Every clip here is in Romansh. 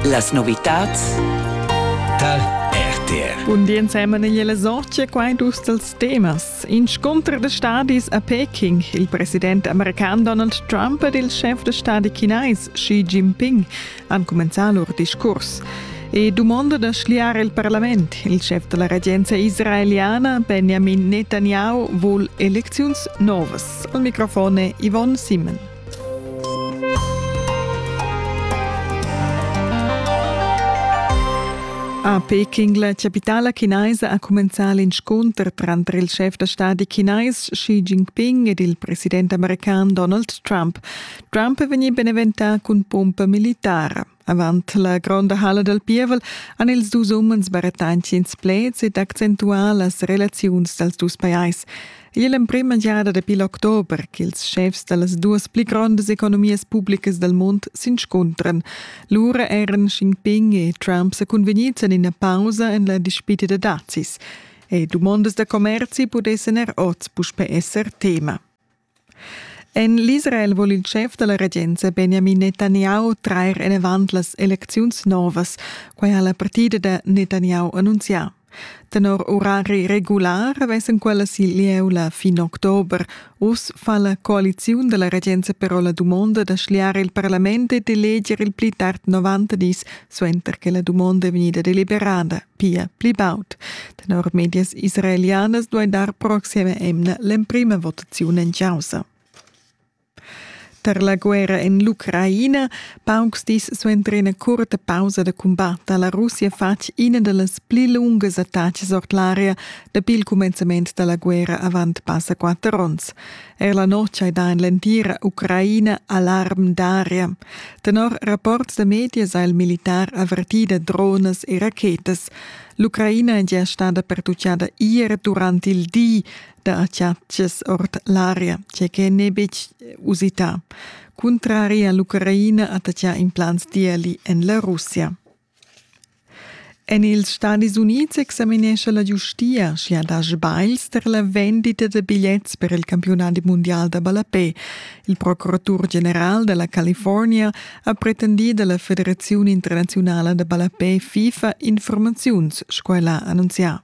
Las novitads tar RTR. Un di ensemen in le sorge quai dus dels temas. In scontr de stadis a Peking, il president american Donald Trump ed il chef de stadi chinais Xi Jinping han comenzà lur discurs. E domanda da schliare il parlament. Il chef della regenza israeliana, Benjamin Netanyahu, vul elecziuns novas. Al microfone Yvonne Simon. A Peking, la chapitala chinaisa, ha cumenzà l'inscunter tranter il schef da stadi chinais Xi Jinping ed il president american Donald Trump. Trump è vegnì beneventà cun pumpa militara. Avant la gronda halla dal pievel han ils dus umens barettantschens pleds ed accentuà las relaziuns dals dus pajais. Igl è l'emprima giada dapi l'october ch'ils schefs da las duas pli grondas economias publicas dal mund s'inscuntran. Lura eran Xinping e Trump sa cunvegnids en ina pausa en la dispita da dazis. E dumondas da commerzi pudessan er oz puspè esser tema. En l'Israel vul il schef da la regenza Benjamin Netanyahu trair enavant las elecziuns novas. Quai ha la partida da Netanyahu annunzià. Tenor orari regular vessen quellas il lieu la fin october. Uss fa la coaliziun della regenza però la dumonda da schliare il parlament e d'eleger il pli tard 90 dis suenter che la dumonda è vegnida deliberada. pia pli baud. Tenor medias israelianas duai dar proxima emna l'emprima votaziun en chaussa. Tar la guerra en l'Ucraina, paucs dis suenter ina curta pausa da cumbat ha la Russia fatg ina da las pli lungas attacas ord l'aria dapi il cumenzament da la guerra avant passa quatter onns. Eir la notg hai dà in l'entira Ucraina alarm d'aria. Tenor rapports da medias ha il militar avertì da dronas e rachetas. L'Ucraina è gia stada pertutgada ier durant il di da acciatgs ord l'aria, tge che n'è betg usità. Cuntrari a l'Ucraina attacchà implants diali en la Russia. En ils Stadis Unids examinescha la giustia, sch'i ha dà sbagls tar la vendita da bigliets per il campiunadi mundial da ballapè. Il procuratur general da la California ha pretendì da la Federaziun internaziunala da ballapè FIFA informaziuns, sco el ha annunzià.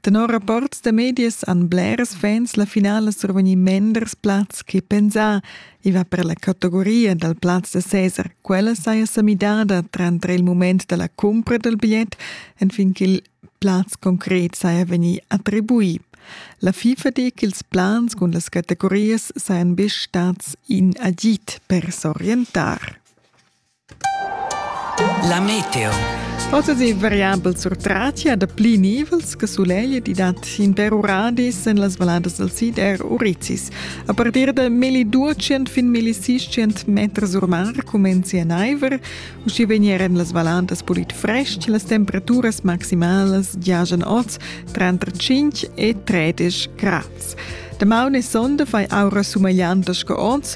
Tenor rapports da medias han blers fans la finala survegnì menders plazs che pensà. I va per la categoria dal plaz da Cesar. Quella saja sa midada tranter il mument da la cumpra dal bigliet enfin ch'il plaz concret saja vegnì attribuì. La FIFA di ch'ils plans cun las categorias sajan be stads in agid per s'orientar. La meteo. Oz è variabel surtratia da pli nivels che sulegl di dat in per uradis en las valadas del sid er Urizis. A partir da meli 200 fin meli 600 meter sur mar comenzi a naiver, usci venieren las valadas pulit fresc, las temperaturas maximalas giajan oz tra 5 e 13 grads. De maune sonde fai aura sumagliantas che oz,